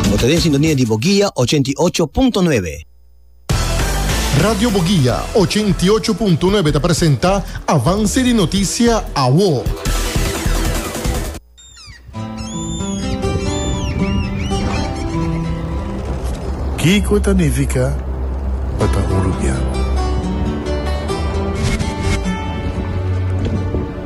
Bo ta den sintonia di Boguia ochenta i ocho punto nuebe. Radio Boguia ochenta i ocho punto nuebe ta presenta Avance di Noticia Awo. Kiko ta nifica pa ta uruguiano?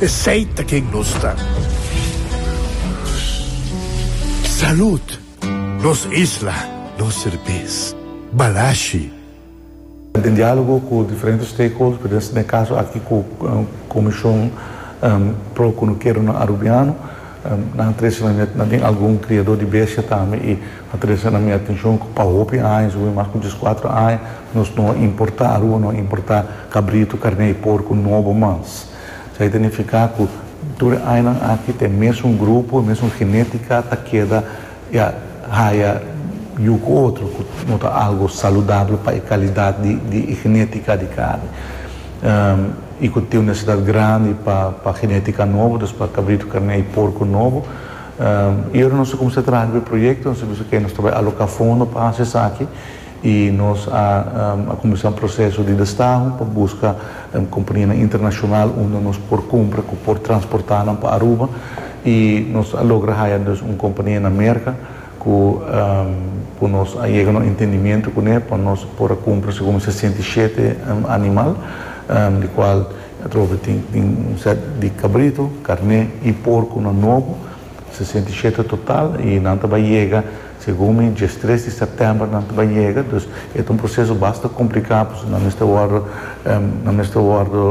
Esey ta ken nos ta. Salud! Nos isla, nos serbes. Balashi. Den dialogo cu diferente stakeholders, pero den e caso aki cu Comision pro Cunukieronan Arubiano, Nan a trese na mi at, nan tin algun kriadó di bestia tambe i a trese na mi atenshon ku pa hopi aña, si bo mas ku dies kuater aña, nos no a importá, Aruba no a importá kabritu, karné i porku nobo mas. Esei ta nifiká ku tur e añanan aki ta e mesun grupo, e mesun genétika ta keda. I a haya yu ku otro ku no ta algu saludabel pa e kalidat di e genétika di karni i ku tin un necesidad grandi pa genétika nobo, dus pa kabritu, karné i porku nobo. I ora nos ta kuminsá traha riba e proyekto nos a bisa ke nos ta bai aloká fondo pa hasi esaki. y nos a cuminsa un proceso di destaho pa busca companianan internacional unda nos por cumpra cu por transporta nan pa Aruba y nos a logra haya dus un compania na Merca cu cu nos a yega na un entendimiento cu ne pa nos por a cumpra segun un sesenta y shete animal di cual atrobe tin tin un set di cabrito, carne y porco nan nobo, sesenta y shete total y nan ta bay yega. Segun mi, djes tres di sèptèmber nan ta bai yega, dus e ta un proseso basta kompliká pasobra nan mester wòrdu nan mester wòrdu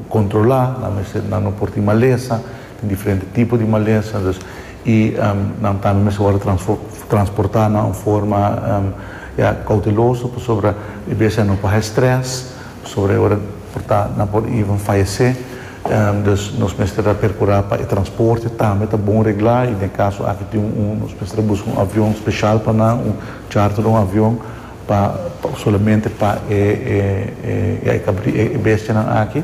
kontrolá, nan mester nan no por tin malesa, tin diferente tipo di malesa, dus i nan tambe mester wòrdu transfo transportá na un forma ya kouteloso pasobra e bestia nan por haña strès, pasobra e ora por ta nan por even fayesé, Dus nos mester a percura pa e transporte tambe ta bon regla y den caso aki tin un, nos mester a busca un avion special pa nan, un charter un avion pa solamente pa e bestianan aki.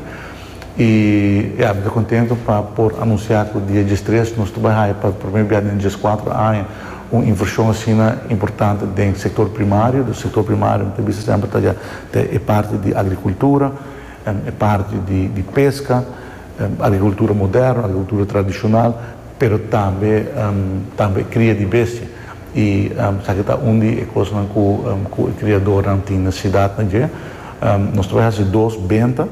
Y ya mi ta contento pa por anuncia cu dia diestres nos ta bay haya pa primer bia den diescuatro aña un inversion asina importante den sector primario, dus sector primario mi ta bisa semper ta ya ta e parti di agricultura, E parti di pesca, agricultura moderno, agricultura tradicional, pero tambe tambe cria di bestia. Y esaki ta un di e cosnan cu cu e criadornan tin necesidad na dje. Nos ta bay haci dos benta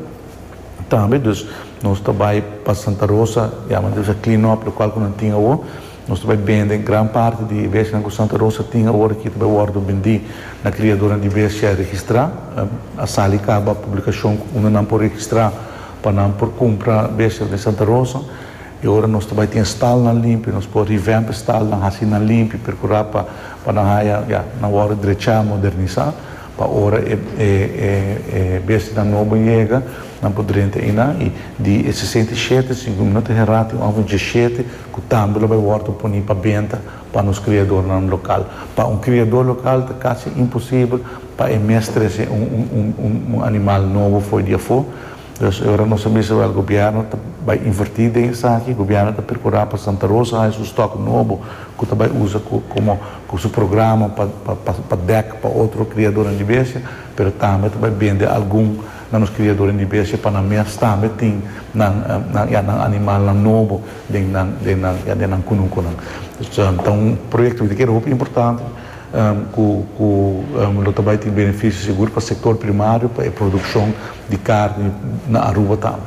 tambe, dus nos ta bay pa Santa Rosa, diamanti bisa clean up locual cu nan tin awo. Nos ta bai bende gran parti di e bestianan ku Santa Rosa tin awor aki ta bai wòrdu bendí na kriadonan di bestia registrá. A sali kaba publikashon unda nan por registrá pa nan por kumpra bestia den Santa Rosa. E ora nos ta bai tin e stalnan limpi, nos por revamp e stalnan, hasi nan limpi, perkurá pa pa nan haya, ya, nan wòrdu drechá, modernisá, pa ora e e bestianan nobo yega nan por drenta einan. I di e sesenta i shete, si mi no ta herá, tin un òf di djeshete, ku tambe lo bai wòrdu poní pa benta pa nos kriadornan lokal. Pa un kriador lokal ta kasi imposibel pa e mes trese un animal nobo for di afó. Dus e ora nos a mester wèl gobièrnu ta bai invertí den esaki, gobièrnu ta prokurá pa Santa Rosa haña su stòk nobo ku ta bai usa komo ku su programa pa dèk pa otro kriadornan di bestia, pero tambe ta bai bende algun. Na nos kriaduren di bestia pa nan mes tambe tin nan ya nan animalnan nobo den nan den nan ya den nan kunukunan. Ta un proyekto di keda hopi importante ku ku lo ta bai tin benefisio sigur pa sektor primario pa e produkshon di karni na Aruba tambe.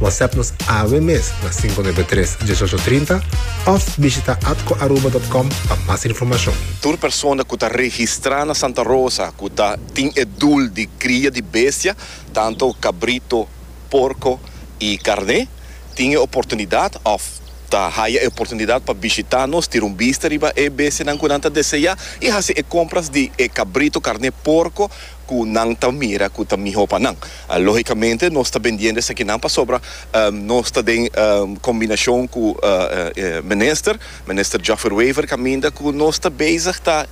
WhatsApp nos awe mes na 593 1830 of bishita atcoaruba.com pa mas informacion. Tur persona cu ta registra na Santa Rosa cu ta tin e dul di cria di bestia, tanto cabrito, porco y carne, tin e oportunidad of ta haya e oportunidad pa bishita nos, tira un bista riba e bestianan cu nan ta desea y haci e compras di e cabrito, carne, porco, ku nan ta mira ku ta mihó pa nan. Lógikamente nos ta bendiendo esakinan pasobra nos ta den kombinashon ku minister, Minister Joffer Wever kaminda ku nos ta bezig ta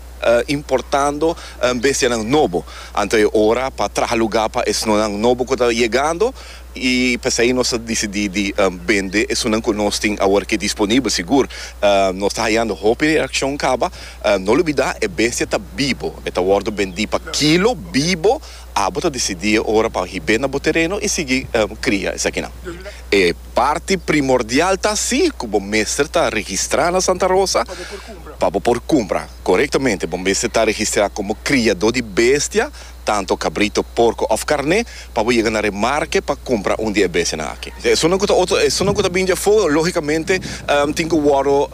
importando bestianan nobo. Anto e ora pa traha lugá pa esnonan nobo ku ta yegando. I p'esei nos a disidí di bende esunnan ku nos tin awor ke disponibel. Sigur, nos ta hayando hopi reakshon kaba. No lubidá, e bestia ta bibo. E ta wòrdu bendí pa kilo, bibo. Abo ta disidí e ora pa hib'é na bo tereno i sigui kria esakinan. E parti primordial ta así ku bo mester ta registrá na Santa Rosa pa bo por kumpra. Korektamente, bo mester ta registrá komo kriadó di bestia. tanto cabrito, porco of carne, pa bo yega na remarke pa cumpra un di e bestianan aki. Esunnan cu ta otro, esunnan cu ta bin dje afo, logicamente tin cu wordo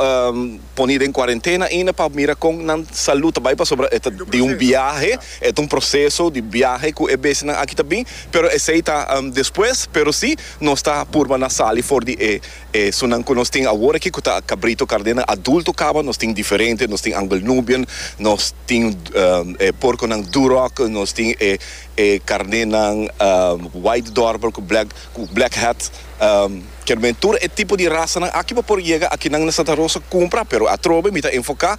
poni den cuarentena ainda pa mira con nan salud ta bay pasobra e ta di un biahe, e ta un proceso di biahe cu e bestianan aki ta bin, pero esey ta despues, pero si nos ta purba na sali for di e E sunan ku nos tin awor aki ku ta kabrito kardena adulto kaba, nos tin diferente, nos tin Angle Nubian, nos tin e porkonan Duroc, nos tin e e karnenan White Dorper ku Black ku Black Hat, kermen tur e tipo di rasanan aki pa por yega aki nan na Santa Rosa kumpra, pero atrobe mi ta enfoká.